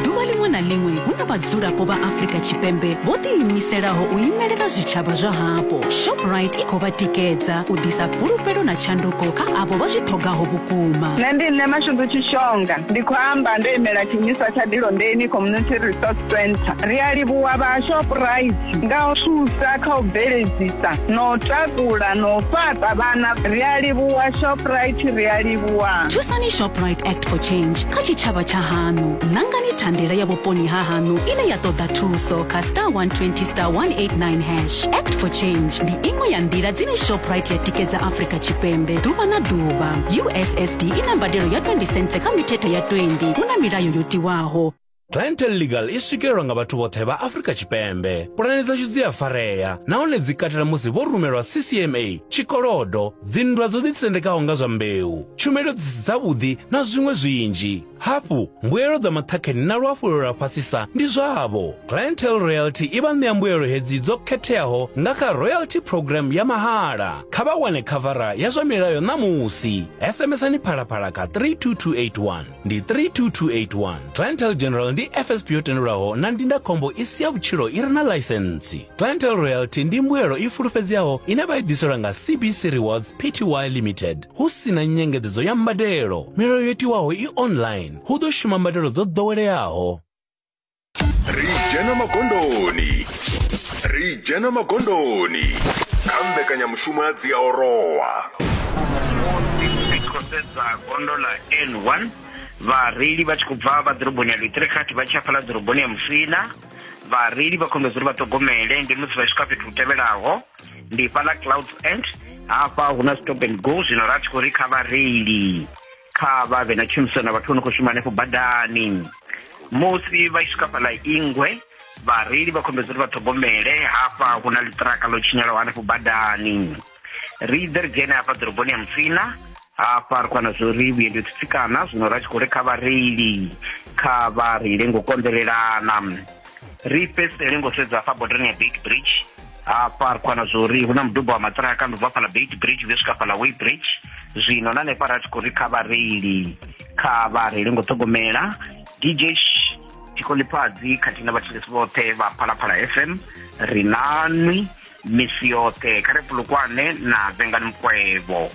ḓuvha ḽiṅwe na ḽiṅwe hu na vhadzulapo vha afrika tshipembe vho ḓiimiselaho u imelela zwitshavha zwa hapo shoprite i khou vha tikedza u ḓisa fhulufhelo na tshanduko kha avho vha zwi ṱhogaho vhukuma nṋe ndi nṋe mashundu tshishonga ndi khou amba ndo imela tshiimiswa tsha dilondeni community resource center ri a livhuwa vha shoprite nga u thusa kha u bveledzisa no takula no fhaṱa vhana ri a livhuwa shoprite ri a livhuwa thusani shoprite act for change kha tshitshavha tsha haṋu ṋangani thandela ya vhuponi ha haṋu ine ya ṱoḓa thuso kha star 120 star 189 hash act for change ndi iṅwe ya nḓila dzine shoprite ya tikedza afrika tshipembe ḓuvha na ḓuvha ussd i na mbadelo ya 20 cents kha mithethe ya 20 hu na milayo yo tiwaho Clientele Legal i swikelelwa nga vhathu vhoṱhe vha Afrika Tshipembe. Pulane dzashu dzi a farea nahone dzi katela musi vho rumelwa CCMA, tshikolodo, dzinndwa dzo ḓitsendekaho nga zwa mbeu, tshumelo dzi si dzavhuḓi na zwiṅwe zwinzhi. Hafhu, mbuelo dza maṱhakheni na luhafhulelo lwa fhasisa ndi zwavho. Clientele Royalty i vha ṋea mbuelo hedzi dzo khetheaho nga kha Royalty Programme ya mahala. Kha vha wane khavara ya zwa milayo ṋamusi. SMSani Phalaphala kha 32281. ndi 32281 clientele general ndi fsp yo tendelwaho na ndindakhombo i si ya vhutshilo i re na ḽaisentsi clientele royalty ndi mbuelo i fulufhedzeaho ine vha i ḓiselwa nga cbc rewards pty limited hu si na nyengedzedzo ya mbadelo milayo yo tiwaho i online hu ḓo shuma mbadelo dzo ḓoweleaho ri dzhena magondoni ri dzhena magondoni kha mbekanyamushumo ya dziaorowa ri khou sedza gondo ḽa n1 vhareili vha tshi khou bva vha ḓoroboni ya litrekati vha tshi hafhaḽa ḓoroboni ya musina vhareili vha khombedzo uri vha ṱhogomele ndi musi vha swika fhethu hu tevhelaho ndi fhaḽa clouds end hafha hu na stop and go zwino ra tshi khou ri kha vhareili Kha vha vhe na tshumisano na vhathu vho no khou shuma hanefho badani. Musi vha tshi swika fhaḽa Ingwe, vhareili vha khombedza uri vha ṱhogomele hafha hu na ḽiṱiraka ḽo tshinyalaho hanefho badani. Ri ḓe ri dzhene hafha ḓoroboni ya Musina, hafha ri khou wana zwo ri vhuendi ho tsitsikana, zwino ra tshi khou ri kha vhareili kha vha reile ngo konḓelelana. ri fhedzisele ngo sedza hafha bodani ya beit bridge hafha ri khwana zwo uri hu na mudubo wa maṱiraka ndo bva fhala beit bridge zwi swika fhala way bridge zwino na hanefha ra tshi khou ri kha vhareili kha vhareili ngo ṱhogomela dj tikolipfadzi khathihi na vhathetshelesi vhoṱhe vha phalaphala fm ri nanwi misi yoṱhe kha ri pulukwane na vengani mukwevho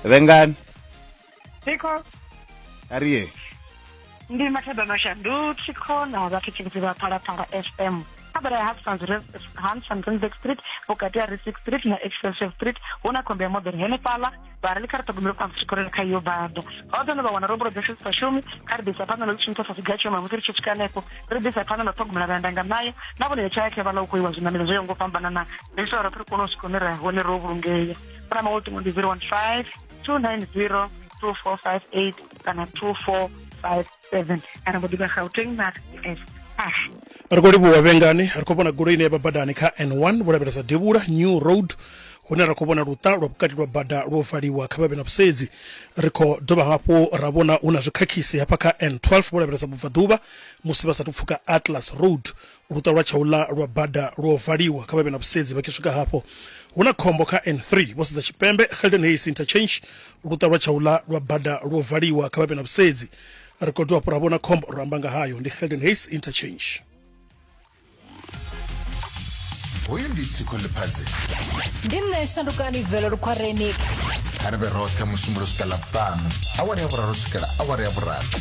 vengani Thikho. Ariye. Ndi mathada no shandu thikho na vhathu tshibudzi vha phalaphala FM. Khabara ya Hansons Hansons Randburg Street vhukati ha Risic Street na Excelsior Street hu na khombo ya moḓoro henefhaḽa vha ri kha ri ṱhogomelo phansi tshikoloni kha iyo bada ho ḓo no vha wana rombulo dzashu dzi sa shumi kha ri ḓisa phanḓa na ḽi shumisa sa siga tshoma musi ri tshi swika hanefho ri ḓisa phanḓa na ṱhogomela vha ndanga nayo na vhone ya tshaya khevhala u khou iwa zwiṋamelo zwo yaho ngo fhambanana ri ita uri ri kone u swika hune ra hone ro vhulungea phone number ultimo ndi 015 290 2458 kana 2457 kana mbo ḓivha gauteng na s ah ri khou livhuwa vhengani ri khou vhona goloi ine ya vha badani kha n1 vho lavhelesa devhula new road hune ra khou vhona luṱa lwa vhukati lwa bada lwo valiwa kha vhavhe na vhusedzi ri khou dovha hafhu ra vhona hu na zwikhakhisi hafha kha n12 vho lavhelesa vhubvaḓuvha musi vha sathu pfuka atlas road luṱa lwa tshaula lwa bada lwo valiwa kha vha vhe na vhusedzi vha tshi swika hafho hu na khombo kha n3 vho sedza tshipembe helden hayes interchange luṱa lwa tshaula lwa bada lwo valiwa kha vha vhe na vhusedzi ri khou dovha fhura vhona khombo ro amba nga hayo ndi helden hayes interchange hoyu ndi tsiko ḽiphadzi ndi nṋe shandukani velo lukhwareni kha ri vhe roṱhe musumbulo swika ḽavhuṱanu awara ya vhuraru swikela awara ya vhurathi